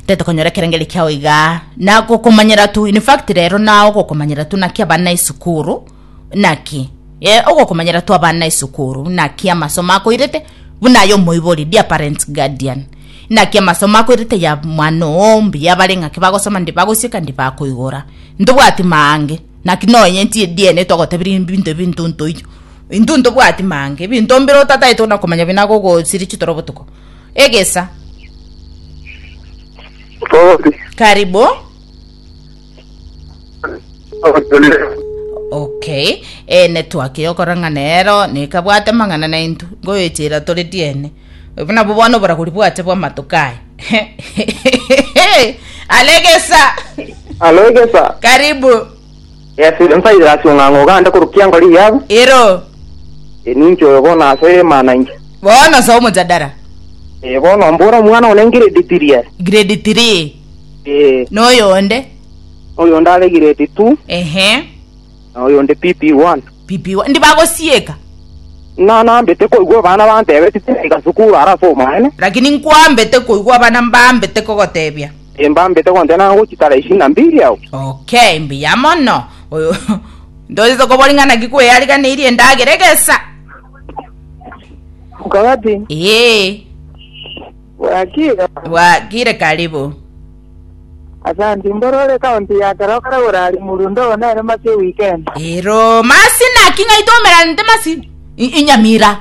tetokonyora ekerengeri kiao iga na gokomanyera tu in fact rero na ogokomanyera tu naki abana esukuru naki e, ogokomanyera tu abana esukuru naki amasomo akoirete buna aye omoibori dear parents guardian naki amasomo akoirete ya mwana oo mbuya bare ng'aki bagosoma ndi bagosieka ndi bakoigora ntobwati mange naki noenye nti diene togotebiri ebinto ebinto ntoiyo intwe ntobwati mange ebinto mbire otataete ona komanya binago gosiri chitoro botuko egesa Sorry. karibu okay e netwaki okora ng'a nero nekabwate mang'ana naintu ngoyochera tore diene obo nabo bono oboragori bwache bw'amatuko aya alegesa Alo egesa. karibu Yeso oria nsaidera ase ong'ang'a o Ganda korwa kianga ore Iyabu. Ero. Ee, ninche oyo bono ase ere emana inche. Bono soa omojadara. Ee, bono mbora omwana one grade three are. Grade three. Ee. Na oyonde. Oyonde are grade two. Ehe. Na oyonde PP one. PP one. Ndi bagosieka. Na nambete koigwa abana bantebeti tiga sukuru ara ase omaene. Lakini nkwambete koigwa abana mbambete kogotebia. Timbambete gontena ng'a gochitara isiko na mbiri yao. Okay, mbuya mono. Oyo ntochete kobori ng'a naki kweyariganeirie endagera egesa. Mokabati. Ee. Bwakire. Bwakire karibu. Asante, mbore ore county ya kero kare gorari murundo oo nere masi weekend. Ero, masi naki ng'ai tomeranete masi? Inyamira.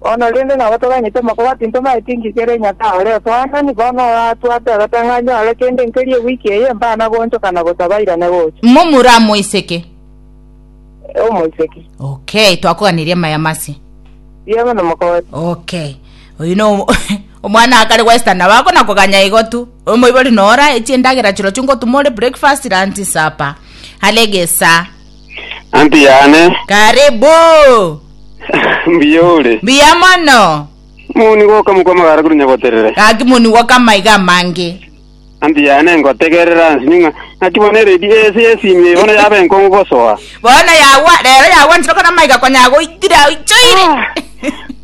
Bono rende nabo toganyete amakuba ati ntomaete engaki ere Nyasae ore otoanani, bono oratwate agatang'anyo ore kende nkeria ewiki eye, mbana goonchoka na gosa bairane gocha. Momura amoiseke. Eh, omoiseke. Okay, twakoganeria amaya mase. Riaba na mokooti. Okay. Oyu no omwana akare gwesta na bako na koganya igo tu. Omoibori nora echi endagera chirochio ngotumore breakfast, lunch, supper. Hale gesa. Anti yane. Karibu. Mbuya ore. Mbuya mono. Moni goka mokwa magara korwa Nyaboterere. Gaki moni goka amaiga amange. Anti yane ngotegerera nsinye ng'a naki bono eredi ese yesimie bono yaba enkong'u gosoa. Bono yagwa, rero yagwa nchire okona amaiga konya agoitire, aichoire.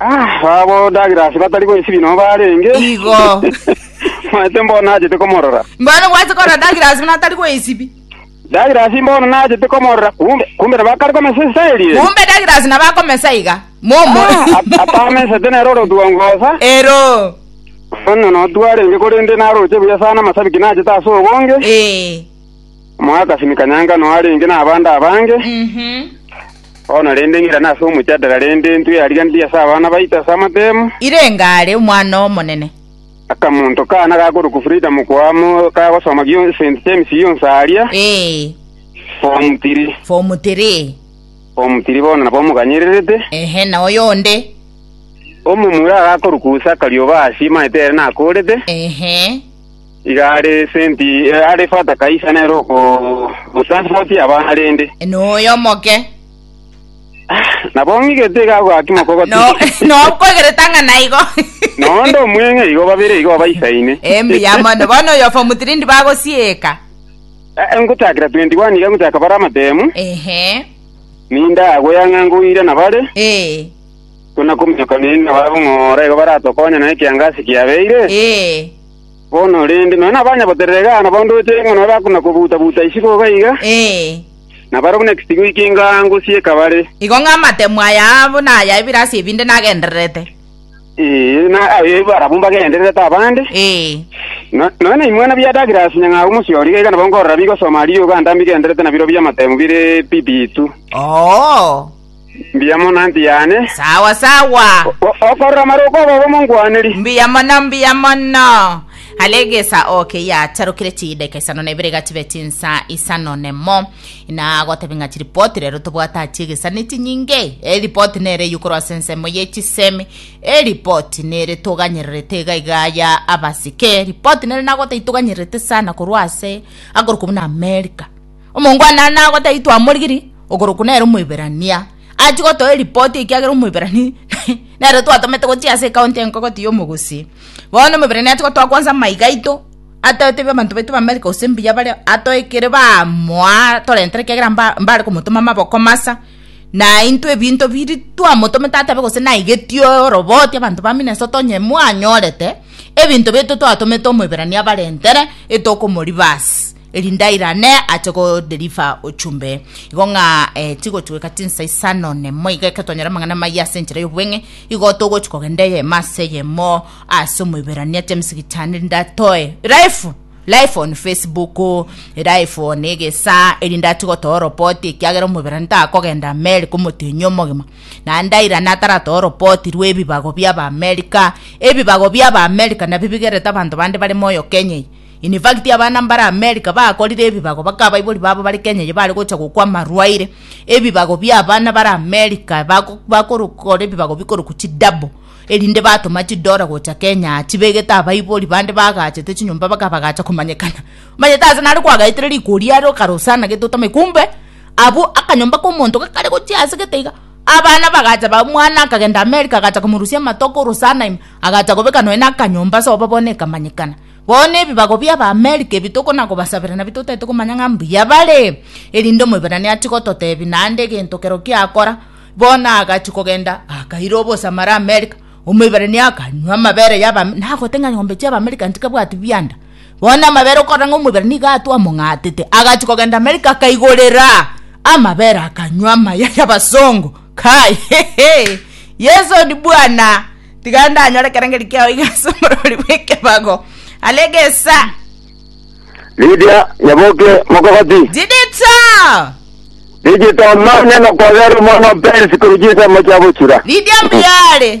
Abwo Douglas batari goisibia nao barenge. Igo. Manyete mbono nachete komorora. Mbono gwachete korora Douglas buna atari goisibia. Douglas mbono nachete komorora kumbe kumbe nabo akare komesa esaya erie. Kumbe Douglas nabo akomesa iga. Momo. Ah, Atamesete nere ore otuongosa. Ero. Bono notwarenge korende naroche buya sana amasabiki nachete ase obonge. Eh. Mwakasimika nyanga no arenge na abande abange. Mhm. Bono rende ng'irane ase omochandera, rende intwe yariganirie ase abana baito ase amatemo. Irenga are omwana omonene. Akamonto kaana gakorokwa Frida mokoamo kagosoma gio- St. James yonsi aria, Ee, Form 3. form 3. Form 3 bono nabo omoganyererete. Ehe, na oyo onde. Omomura agakorokwa Zakaria oba Asia, maete ere nakoorete. Ehe. Iga are senti are fata kaisa nere okomosansotia abana rende. Noyo moke. Nabo ng'igete iga agoaki mokogoti. No, no nkwegereta ng'a naigo. Noonde omweng'e igo babere igo baisaine. Embuya mono. Bono oyo form 3 ndi bagosieka. Eh, ngotakera 21 iga ngotaka bare amatemu. Ehe. Ninda agoya ng'a ngoira nabare. Eh. Tuna kominyoka nini nabare bong'ora igo baratokonya na ekiangasi kiabeire. Eh. Bono rende, nonya nabanya boterere iga, na bonde oche ing'we nonya bakuna kobuta-buta isiko iga iga, Ee, na bare buna ekesigo eke engango sieka bare. igo ng'a amatemu aya aabo na aya ebirasi ebinde nagendererete. Ee, na aye barabwo mbagendererete abande. Ee, No- Nonya naimwana bia Douglas nyang'au omosio riga iga nabo nkorora bigosoma riogo anda mbigendererete na birobio amatemu bire bibitu. oo. Mbuya mono, anti yane. Sawa sawa. Okorora amarooko abo obomongwaneri. Mbuya mono, mbuya mono. Are egesa oke yatarukire chideka isano na ibere gachiba chinsa isano nemo na gotebe ng'a chiripoti rero tobwate achi egesa ne chinyinge eripoti nere yukorwa ase ensemo ye chisemi eripoti nere toganyererete iga iga ya abasike eripoti nere nagotaitoganyererete sana korwa ase akorwa kobuna America Omongwana are nagotaitwa amorigiri, okorokwa nere Omoiberania, achie gotoa eripoti ekiagera Omoiberania nere twatomete gochia ase ekaunti enkogoti y'omogosi. Bono Omoiberania achie gotoa kwansa amaiga aito, atoe tebia abanto baito b'Amerika gose mbuya bare atoe ekere bamoa torentere ekiagera mba mbare komotoma amaboko masa, na intwe ebinto biri twamotomete atabe gose naigetie oroboti abanto ba Minnesota onye mwanyorete ebinto bito twatomete Omoiberania abarentere etokomoriba ase. Elindaira ne ache go deliver ochumbe igo ng'a eh, tigotweka tinsa isano nemo iga eketonyora amang'ana maya ase enchera y'obweng'e igo togochi kogenda eyemo ase eyemo ase omoiberania ase emisigiti ane ndatoe life life on facebook life on egesa eri ndati gotoa report ekiagera omoiberani takogenda america omotenyi omogima na ndaira nataratoa report rwa ebibago bia ba america ebibago bia ba america nabi bigerete abanto bande bare moyo kenya eye In fact, abana mbare America bakorire ebibago baka abaibori babo bare Kenya eye bare gocha gokwa amarwaire, ebibago bia abana bare America bago bakorokora ebibago bikorokwa chi double erinde batoma chidora gocha Kenya aa chibegete abaibori bande bagachete chinyomba baka bagacha komanyekana. Omanyete ase nare kwagaetire rikori are okarosana gete otame kumbe abwo akanyomba ka omonto gakare gochia ase gete iga abana bagacha ba omwana akagenda America agacha komorusia amato akorosana ime agacha kobeka nonya na akanyomba sobo bono ekamanyekana. Bono ebibago bi'Abaamerika ebi tokona kobasabera nabio totaete komanya ng'a mbuya bare, erinde Omoibrania atigototebia naende egento kero giakora. Bono agachia kogenda, akaira obosamare Amerika. Omoibrania akanywa amabere y'Abaamerika, nagote ng'a nyombe chi'Abaamerika ntikabwati bianda. Bono amabere okorora ng'a Omoibrania iga atwo among'atete, agachia kogenda Amerika akaigorera amabere akanywa amaya y'Abasongo. Kai, hehe! Yeso ondi bwana! Tiga ndanyore kerengeri kiao iga ase omorori bw'ekebago. Arege esa. Lidia nyaboke mokogoti. Jidita! Rijita omanye nokobera omwana o Perisi korwa chinsemo chiabo chira. Lidia mbiare.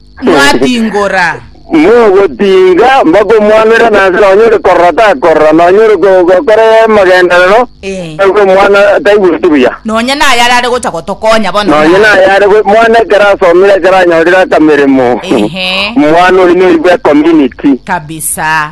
mwabingora. Mogotinga bakomwanera nanse nonye ore korora takorora nonye ore go- gokora amagenderero Eh. nabwo omwana taigweti buya Nonya naye arare gocha gotokonya bono. nonye ng'a- naye are gwe- mwana ekero asomire ekero anyorire akameremo Ehe. omwana oyi noigwe community Kabisa.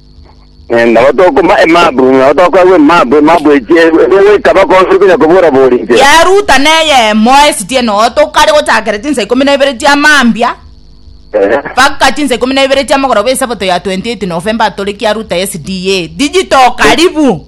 Eh, nabo tokoma emabu nabo tokoragwa emabu emabu eche egoika bakonsi konya kobora boringe Yaruta neyemo esitie noto kare gochakera chinsa ikomi na ibere chia mambia Eh, mpaka chinsa ikomi na ibere chia mogoroba esabato ya 28 November atoreki aruta SDA digital karibu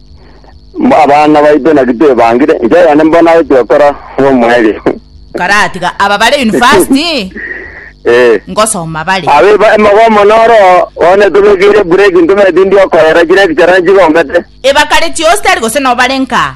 Abana baito naki twebangire, inche oyonde mbono agochia gokora bw'omoerio. Karatiga aba bare university, Ee. ngosoma bare. Abe ba- emogomo noro, bono etobekeire break, ntome tindi okorera chire echara nchigombete. Ebakare chionsi tari gose nobarenka.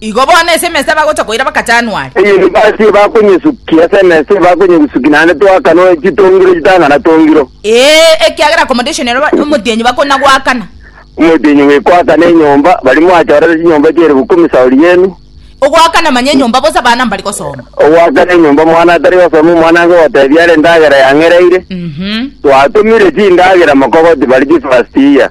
Igo bono ase emesa bagocha koira mpaka Januari. Eyende basi ebakonyesukia ase emesa ebakonyegusuki naende twakana chitongiro chitang'ana tongiro. Ee, ekiagera accommodation ero omotienyi bakona goakana. Omotienyi bwekoakana enyomba, bari mwachorere chinyomba chia eribu ikomi saori yenu. Ogoakana manya enyomba bosa abana mbari gosoma. Ogoakana enyomba omwana atari gosoma omwana ange gotebia are endagera yang'ereire. Twatumire chindagera mokogoti bari chifirastia.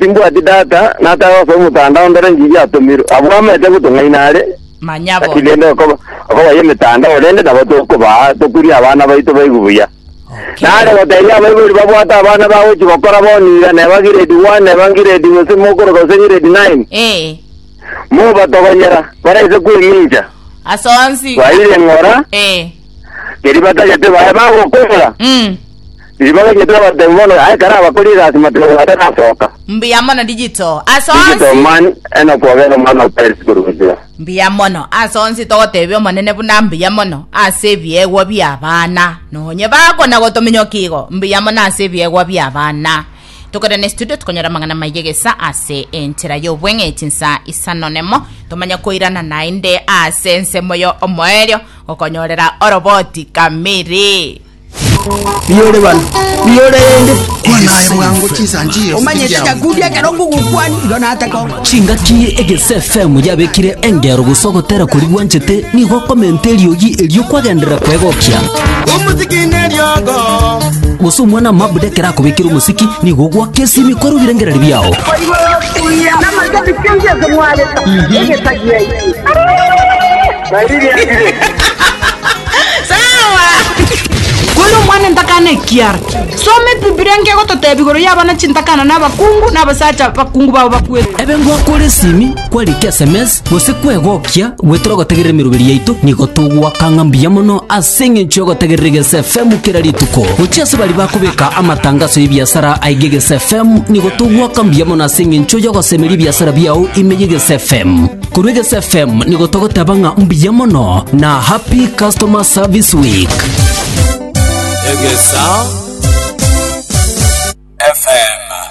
Timbwati Tata, natare gose omotanda onde ore ngigio atomirwe. Abwo amanyete gotong'aina are, Manya naki bono. rende okoba- okobaya emetanda ore, rende nabo tokobaa, tokurie abana baito baigwe buya. Okay. Nare goteebia abaibori babwate abana bagochia gokora bono iga, neba grade one, neba grade gose mokoroka gose grade nine, Eh, mobatogonyera, barese kwemincha, ase onsi. baire ng'ora, Eh. keria batagete baye bagokwera. Mm. Ribaga riaito nabatebia bono ng'a ekero abakori egasi matogo batarasoka. Mbuya mono Digital ase Digital onsi. man enoka obere omwana o Paris korwa gochia. Mbuya mono ase onsi togotebia omonene buna mbuya mono ase ebiegwa biabana nonye bakona gotominyoka igo mbuya mono ase ebiegwa biabana tokore ne studio tokonyora amang'ana maye gesa ase enchera y'obweng'e echinsa isano nemo tomanye koirana naende ase ensemo yo omoerio gokonyorera oroboti kamiri Riore bana, riore rende, kwana aye bwango chinsanchio. Omanyete ekakudi ekero ngogokwani, igo natakongora. Chingaki egese FM yabekire engero gose ogotera kori gwanchete nigo okomenta eriogi erio kwagenderera kwegokia. Omosiki neriogo. Gose omwana mabuda ekero akobekire omosiki nigo ogwaka esimi kwarugire ngerari biao. Namanya bikengi ase mwareta, egesagiai. Kore omwana ntakana ekiara. Soma Ebibilia nkegototeba igoro y'abana chintakana na abakungu na abasacha bakungu babo bakwete. Ebe ngwakore esimi, kwarike esemesi, gose kwegokia, gwetere ogotegerera emeroberi yaito, nigo togoaka ng'a mbuya mono ase eng'encho y'ogotegerera Egeso FM kera rituko. Gochia ase baria bakobeka amatangaso y'ebiasara aige Egeso FM, nigo togoaka mbuya mono ase eng'encho y'ogosemeria ebiasara biao ime y'Egeso FM. Korwa Egesu FM nigo togoteba ng'a mbuya mono na happy customer service week. Egesa FM.